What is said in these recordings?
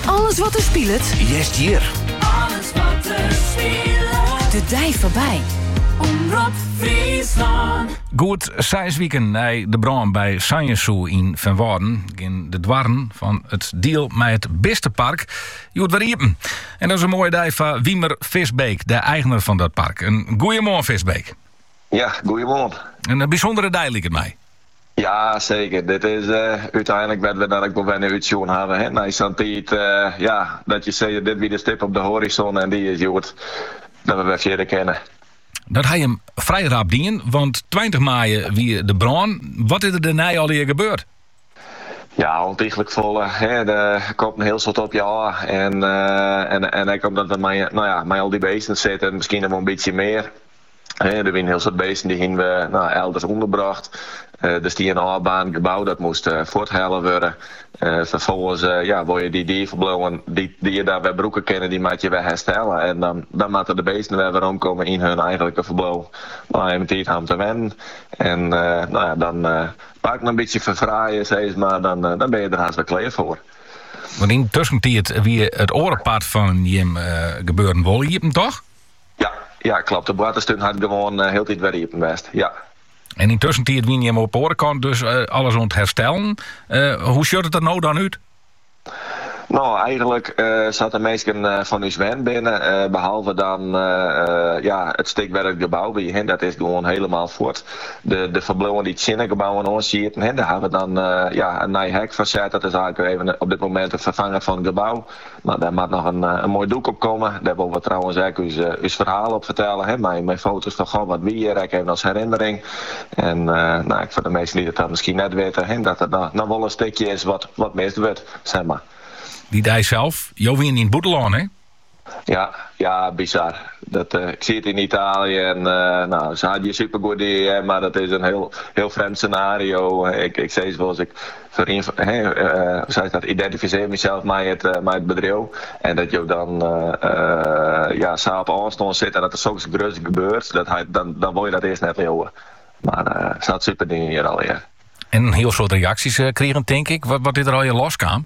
Alles wat der spilet. Hearst hjir. Alles wat der spilet. De dei foarby. Omrop Fryslân. Goed seis wiken nei de brân by Sanjes Zoo yn Feanwâlden geane de doarren fan it diel mei it bistepark hjoed wer iepen. En dat is in moaie dei foar Wimer Visbeek, de eigener fan dat park. In goeiemoarn Visbeek. Ja, goeiemoarn. In bysûndere dei liket my. Ja seker, dit is úteinlik wêr't we dat ek wol wer nei útsjoen hawwe. Nei sa'n tiid ja, dat je sizze dit wie de stip op de horizon en dy is hjoed, dat we wer fierder kinne. Dat ha jim frij rap dien, want tweintich maaie wie de brân. Wat is der dêrnei allegear gebeurd? Ja, ûntiglik folle. Der komt in hiel soad op je ôf. En ek omdat we mei al dy beesten sitten, miskien noch wol in bytsje mear. He, der wiene hiel soad beesten dy hiene we nou elders ûnderbrocht. Der stie in ôfbaarnd gebou dat moast fuorthelle wurde. Ferfolgens ja, wol je dy dierferbliuwen dy't je dêr wer brûke kinne, dy moatte je wer herstelle en dan moatte de beesten wer weromkomme yn hun eigenlike ferbliuw. Lei him tiid ha om te wennen en nou ja, dan it park in bytsje ferfraaie sis mar, dan bin je der hast wer klear foar. Want yn de tuskentiid wie it oare part fan jim gebeuren wol iepen, toch? Ja, ja, klopt. De boarterstún hat gewoan eh, hieltyd wer iepen west. Ja. En yn tuskentiid wiene jimme op de oare kant dus eh, alles oan it herstellen. Eh, hoe sjocht it der no dan út? No, eigenlik eh, sa't de minsken eh, fan ús wend binne, eh, behalve dan eh, eh, ja, it stik wêr't it gebou wie, hè, dat is gewoan hielemaal fuort. De, de ferbliuwen dy't tsjin de gebouwen oan sieten, hè, dêr hawwe we dan eh, ja, in nij hek foar set. Dat is eigenlik even eh, op dit moment it ferfangen fan it gebou. Mar dêr moat noch in moai doek op komme. Dêr wolle we trouwens ek ús ferhaal op fertelle, hè, mei mei foto's fan goh, wat wie hjir ek even as herinnering. En nou, ek foar de minsken dy't it dan miskien net witte, hè, dat der noch wol in stikje is wat wat mist wurdt, sis mar. Dy dei sels, jo wiene yn it bûtenlân, hè? Ja, ja, bizar. Dat, ik siet yn Italië en nou, se ha it hjir supergoed dien, mar dat is in hiel hiel frjemd senario. Ik ik sis wolris, ik. Identifisearje mysels mei it bedriuw en dat jo dan sa op ôfstân sitte en dat der soks gruts gebeurt, dan wol je dat earst net leauwe. Mar se ha it super dien hjir allegear. En in hiel soad reaksjes krigen tink ik. Wat is der allegear loskaam?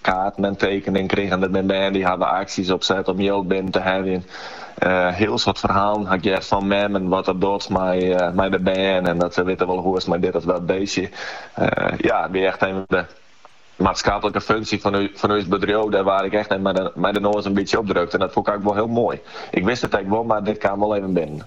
Kaarten en tekeningen krigen der bin bern dy't hawwe aksjes opset om jild binnen te heljen. Hiel soad ferhalen haw ik heard fan memmen wat dat docht mei de bern en dat se witte wolle hoe is it mei dit of dat beestje. Ja, it wie echt even de maatskaplike funksje fan ús bedriuw, dêr waard ik echt even mei de noas in bytsje op drukt en dat fûn ik ek wol hiel moai. Ik wist it ek wol, mar dit kaam wol even binnen.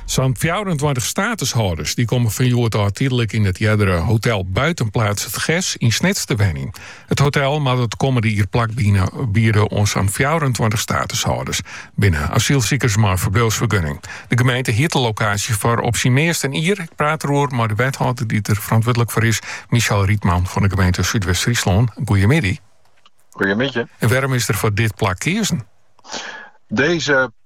Sa'n fjouwerentweintich statushâlders dy't komme fan hjoed ôf tydlik yn it eardere hotel Buitenplaats het Ges yn Snits te wenjen. It hotel moat it kommende jier plak biede oan sa'n fjouwerentweintich statushâlders. Binne asylsikers mei in ferbliuwsfergunning. De gemeente hiert de lokaasje foar op syn meast in jier. Ik praat deroer mei de wethâlder dy't der ferantwurdlik foar is, Michel Rietman fan de gemeente Súdwest-Fryslân. Goeiemiddei. Goeiemiddei. En wêrom is der foar dit plak keazen? Deze